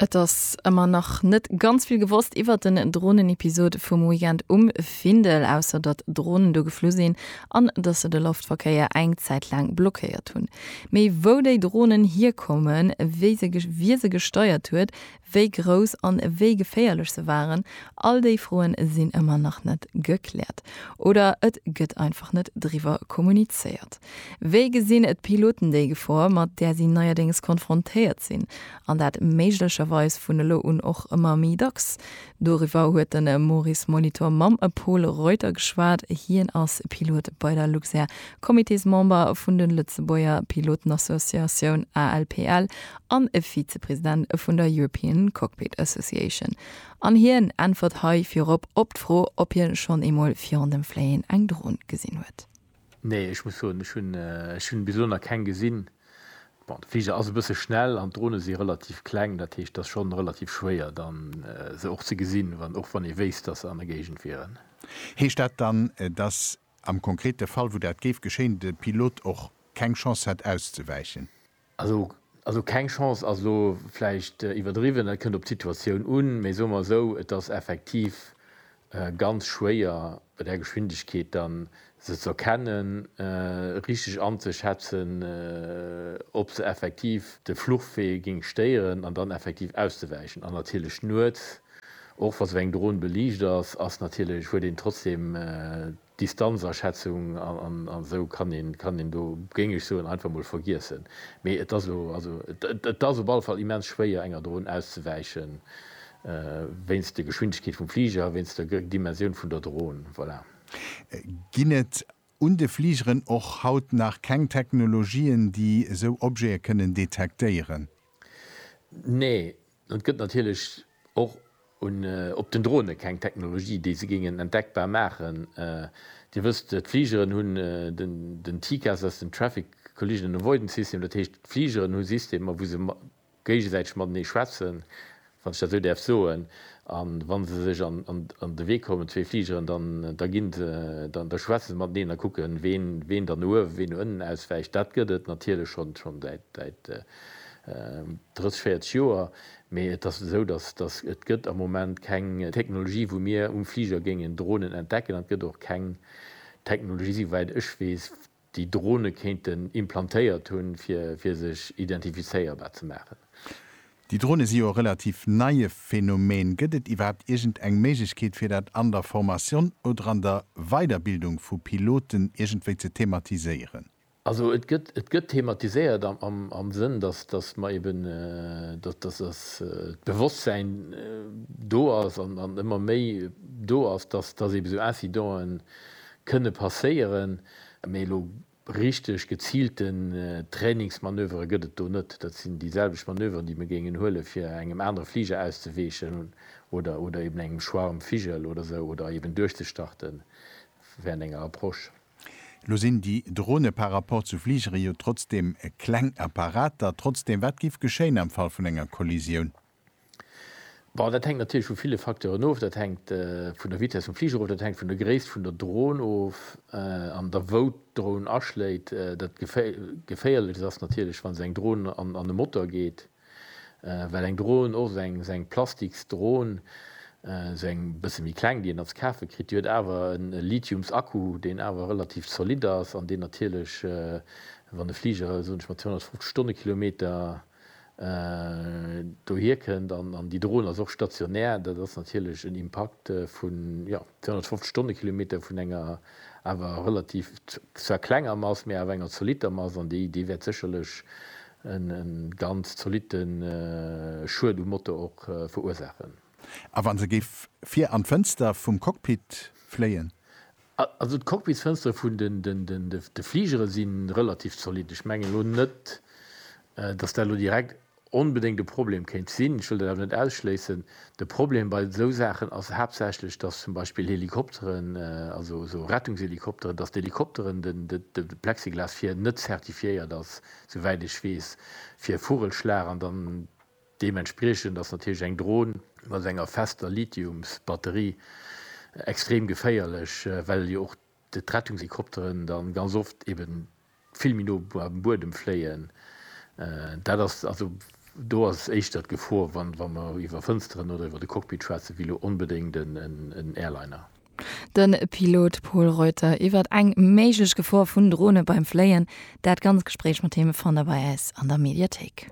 Et ass ëmmer nach net ganz vill gewosst iwwer den Dronenepisod vum Weekend um Findel, ausser datt Dronen do geflu sinn an datt se de Loftverkéier eng Zäit laang blockéiert hunn. Mee wou déi Dronen hierkommen, wie se gesteiert huet, wéi grouss an wéi geféierlech se waren, all déi Froen sinn ëmmer nach net gekläert oder et gëtt einfach net driwwer kommunizéiert. Wéi gesinn d'Piloten déi Gefor, mat där si neierdéngs konfrontéiert sinn, an dat méiglecherweis vun elo un och ëmmer méi dacks? Doriwwer huet de Maurice Molitor mam Pol Reuter geschwat. Hien ass Pilot bei der Luxair, Comitésmember vun de Lëtzebuerger Pilotenassociatioun ALPL an e Vizepresident vun der European Cockpit Association, an hien äntwert hei virop op d'Fro, ob hie schonn eemol virun dem Fléien eng Dron gesinn huet. Nee, ech muss soen, ech hunn, ech hunn bis elo nach keng gesinn. Bon, de Fliger ass e bësse schnell an d'Drone si relativ kleng, dat heescht, et ass schonn relativ schwéier dann se och ze gesinn, wann, och wann ee wéisst, datt se an der Géigend wieren. Heescht dat dann, datt am konkrete Fall, wou dat géif geschéien, de Pilot och keng Chance hätt auszewäichen? Also keng Chance ass elo vläicht iwwerdriwwen, dat kënnt op d'Situatioun un, mee soe mer esou, et ass effektiv ganz schwéier bei där Geschwindegkeet da se ze erkennen, richteg anzeschätzen, ob se effektiv de Fluchwee géing stéieren an dann effektiv auszewäichen. An natierlech nuets, och wa se eng Dron beliicht ass, ass natierlech, huet een trotzdeem. Distanzaschätzung an esou kann een do, géing ech soen, einfach mol vergiessen. Mee et ass elo, et ass op alle Fall immens schwéier enger Dron auszewäichen, wéinst der Geschwindegkeet vum Fliger a wéinst der Dimensioun vun der Dron. Voilà. Ginn et un de Fligeren och haut nach keng Technologien, déi esou Objete kënnen detektéieren? Nee, Et gëtt natierlech och op den Drone keng Technologie, déi se géingen entdeckbar maachen. Dir wësst, d'Fligeren hunn den TCAS, dat ass den Traffic Collision Avoidance System, dat heescht, d'Fligeren hu Systemer, wou se géigesäiteg matenee schwätzen, wann ech dat esou däerf soen. A wa se sech an de Wee kommen, zwee Fligeren, da schwätze se mateneen a kucken, ween dann no uewen, ween no ënnen auswäicht. Dat gëtt et natierlech schonn säit 30, 40 Joer, mee et ass esou, datt et gëtt am Moment keng Technologie, wou mir um Fliger géingen Dronen entdecken, an et gëtt och keng Technologie, souwäit ech weess, déi Drone kéinten implantéiert hunn, fir sech identifizéierbar ze maachen. Déi Drone si jo e relativ neie Phänomen. Gëtt et iwwerhaapt iergend eng Méiglechkeet, fir dat an der Formation oder an der Weiderbildung vu Piloten iergendwéi ze thematiséieren? Also et gëtt, et gëtt thematiséiert am Sënn, dass, dass mer eeben, dass, dass das d'Bewosstsein do ass an ëmmer méi do ass, dass, dass eebe sou Incidente kënne passéieren. Mee elo richteg geziilten Trainingsmanövere gëtt et do net. Dat sinn déi selwecht Manöveren, déi mir géingen huele fir engem anere Fliger auszeweechen oder, oder eeben engem Schwarm Vigel oder sou oder eeben duerchzestarten während enger Approche. Elo sinn déi Drone par rapport zu Fligere jo trotzdeem kleng Apparater. Trotzdeem, wat giff geschéien am Fall vun enger Kollisioun? Bon, dat hänkt natierlech vu ville Facteuren of. Dat hänkt vun der Vitess vum Fliger of, dat hänkt vun der Gréisst vun der Drone of an der wou d'Drone aschléit. Dat Geféierlechst ass natierlech, wa se eng Drone an e Motor geet. well eng Dron och eng se eng plastiks Dron se eng bësse méi kleng déi een als kafe kritt, déi huet awer en Lithiums Akku deen awer relativ zolidd ass an deen natierlech wann e Fliger soen ech mal 250 Stonnekilometer dohier kënnt an déi Dron ass och stationär dat ass natierlech en Impakt vun jo 250 Stonnekilometer vun enger awer relativ zwar klenger Mass mee awer enger zolitter Mass an déi déi wäert sécherlech E ganz zolitte Schued um Motor och verursaachen. A wa se géif vir an d'Fënster vum Cockpit fléien? Also d'Cockpitsfënstere vun de Fligere si relativ zolitt. Ech mengen elo net, datt dat elo direkt onbedéngt e Problem kéint sinn. Ech wëll dat awer net ausschléissen. De Problem bei esou Saachen ass haaptsächlech, datt zum Beispill Helikopteren, also esou Rettungshelikopteren, datt d'Helikopteren, de Plexiglas vir net zertifiéiert ass souwäit ech weess, fir Vogelschlag an dann deementspriechend ass natierlech eng Dron mat enger fester Lithiumsbatterie extrem geféierlech, well jo och d'Rettungshelikopteren da ganz oft eben vill méi no beim Buedem fléien. Dat ass also, do ass éischter d'Gefor, wa mer iwwer Fënsteren oder iwwer de Cockpit schwätzen, wéi elo onbedéngt en Airliner. De Pilot Pol Reuter iwwert eng méiglech Gefor vun Drone beim Fléien. Dat ganz Gespréich mat him fannt der bei eis an der Mediathéik.